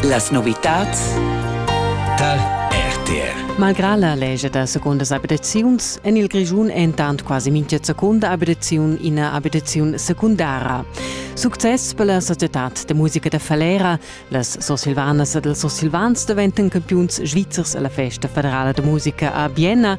Las novitads tar RTR. Malgrà la lescha da segundas abitaziuns en il Grischun è entant quasi mintga secunda abitaziun ina abitaziun secundara. Success per la societad da musica da Falera. Las Sursilvanas ed ils Sursilvans daventan campiuns svizzers alla festa federala da musica a Vienna.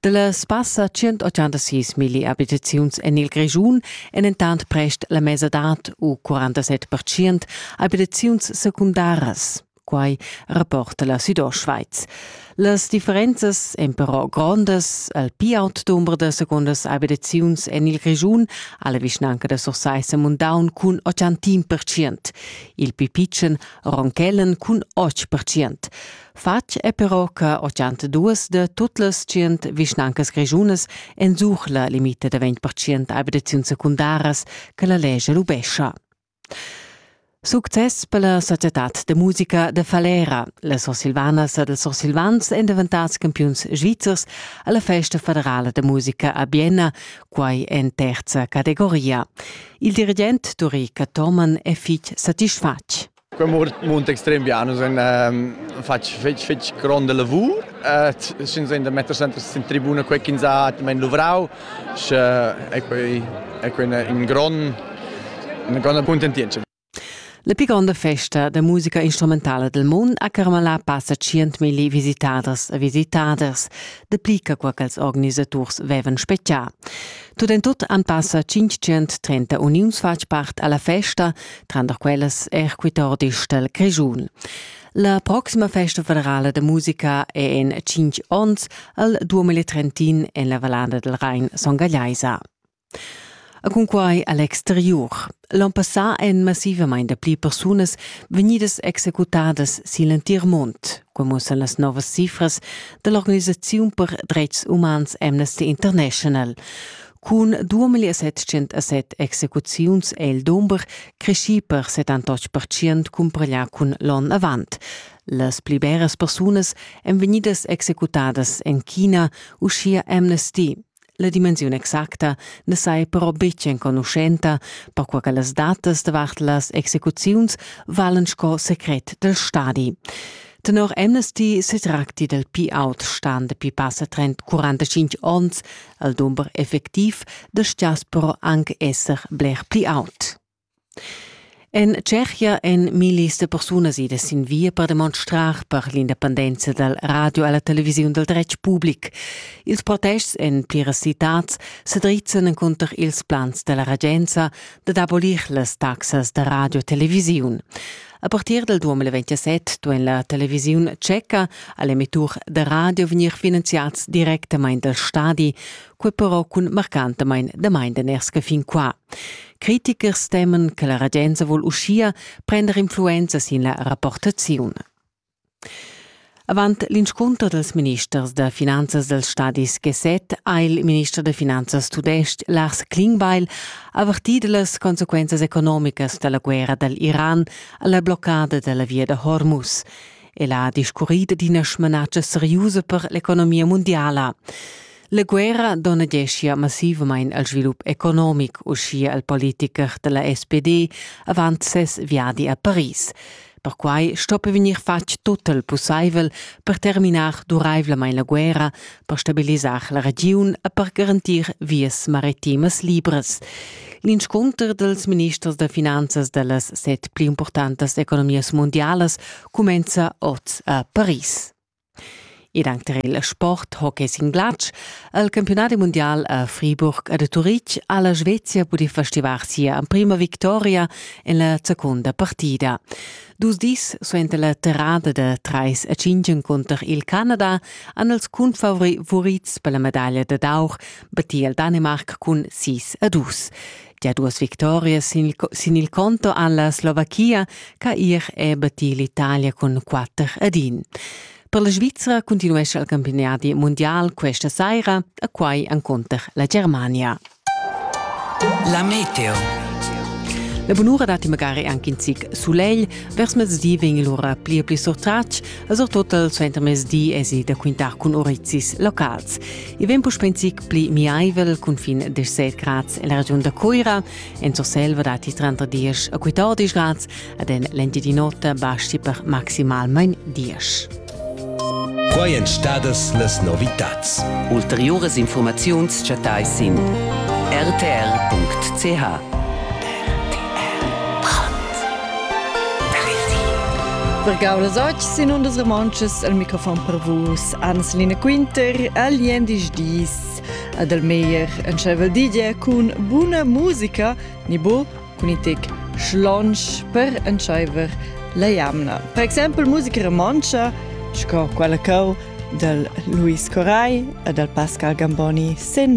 Dallas passa 186 milli abitaziuns en il Grischun èn entant prest la mesadad u 47 percent abitaziuns secundaras. Quai rapporta la Südostschweiz. Las differenzas èn però grondas. Al pi aut dumber da secondas abitaziuns en il Grischun ha la vischnanca da Sursaissa Mundaun cun 80 percent. Il pi pitschen Ronkellen cun 8 percent. Fatg è però che duas de tut las tschient vischnancas grischunas ensuch la limita da 20% abitaziun secundaras che la legge lubescha. Success per la societad de musica de Falera. La Sursilvanas ed els Sursilvans èn daventads campiuns svizzers alla festa federala de musica a Bienna, quai en terza categoria. Il dirigent Duri Cathoman è fitg satisfatg. Quei mund extrem bien, nus ein fatg fetg, fetg gronda lavur, sch'ins ein da metter sempre sin tribuna quei ch'ins ha atgnamein luvrau, sche ei quei, ei quei in grond, una gronda cuntentientscha. La pli gronda festa da musica instrumentala del mund ha carmalà passa tschientmilli visitaders e visitaders, dapli che quaquels organisaturs vevan spetgà. Tut en tut han passa 530 uniuns fatg part alla festa, tranter quellas er quitordis del Grischun. La proxima festa federala de musica è en 5 onns al 2030 en la Vallada del Rhein Son Gagliaisa. A cunquai all'exterior. L'on passà èn massivament pli persunas vegnidas executadas sin l'entir mund. Quei muossan las novas cifras dall'organisaziun per dretgs umans Amnesty International. Cun 2707 execuziuns è il dumber creschì per 78% cumpareglià cun l'onn avant. Las pli beras persunas èn vegnidas executadas en China, uschia Amnesty. La dimensiun exacta na sai però betg enconuschenta, perquai che las datas davart las execuziuns valen sco secret dal stadi. Tenor Amnesty se tracti del P-out stan dapi passa trent 45 onns al dumber effectiv da stias però anc esser bler pli aut. En Tschechia èn millis da persunas idas sin via per demonstrar per l'independenza dal radio e la televisiun dal dretg public. Ils protests en pliras citads sa drizzan encunter ils plans da la regenza dad abolir las taxas da radio e televisiun. A partir dal 2027 duain la televisiun tscheca a l'emettur da radio vegnir finanziads directamain dal stadi, quei però cun marcantamain damain den ersca fin qua. Critichers temen che la regenza vol uschia prender influenza sin la rapportaziun. Avant l'inscunter dels ministers da finanzas dels stadis G7 ha il minister da finanzas tudestg Lars Klingbeil avertì las consequenzas economicas della guerra dal Iran alla bloccada della via da Hormuz. El ha discurrit d'ina smanatscha seriusa per l'economia mondiala. La guerra donadeschia massivamain al svilup economic, uschia al politicher da la SPD avant ses viadi a Paris. Perquai stoppi vegnir fatg tut il pussaivel per terminar duraivlamain la guerra, per stabilisar la regiun e per garantir vias maritimas libras. L'inscunter dels ministers da finanzas da las set pli importantas economias mundialas cumenza oz a Paris. Ed anc tar il sport hockey sin glatsch ha il campiunadi mundial a Friburg ed a Turitg ha la Svezia pudì festivar sia emprima victoria en la secunda partida. Dus dis suenter la terrada da trais a cinq encunter il Canada han els cunfavurits per la medaglia dad aur battì il Danimarc cun sis a dus. Der duas victorias sin il, sin il conto alla Slovachia ca ir e battir l'Italia cun 4 ad 1. Per la Svizzera continuesce il campionati mondial questa saira, a quai encontrer la Germania. La meteo. La bunura dati magari anche in zic solegl, vers mezdi vegn l'ora pli e pli surtratg, e surtut il suentermezdi è si da quintar cun orizis locals. I vegn puspè in zic pli miaivel cun fin 17 grads en la regiun da Cuira, en Surselva datti tranter 10 e 14 grads ed en l'entir di notte basti per maximalmain 10. Qua èn stadas las novitads. Ulteriuras informaziuns chattai sin rtr.ch. Per Gaulas Oc sin undas romontschas al microfon per vus. ans lina quinter a liendisch dis. Adelmeier entscheiva digia cun buna musica, ni bo cun i tec schlonsch per entscheiver la jamna. Per exempel musica romontscha, sco quella cau dal Luis Corai e dal Pascal Gamboni sen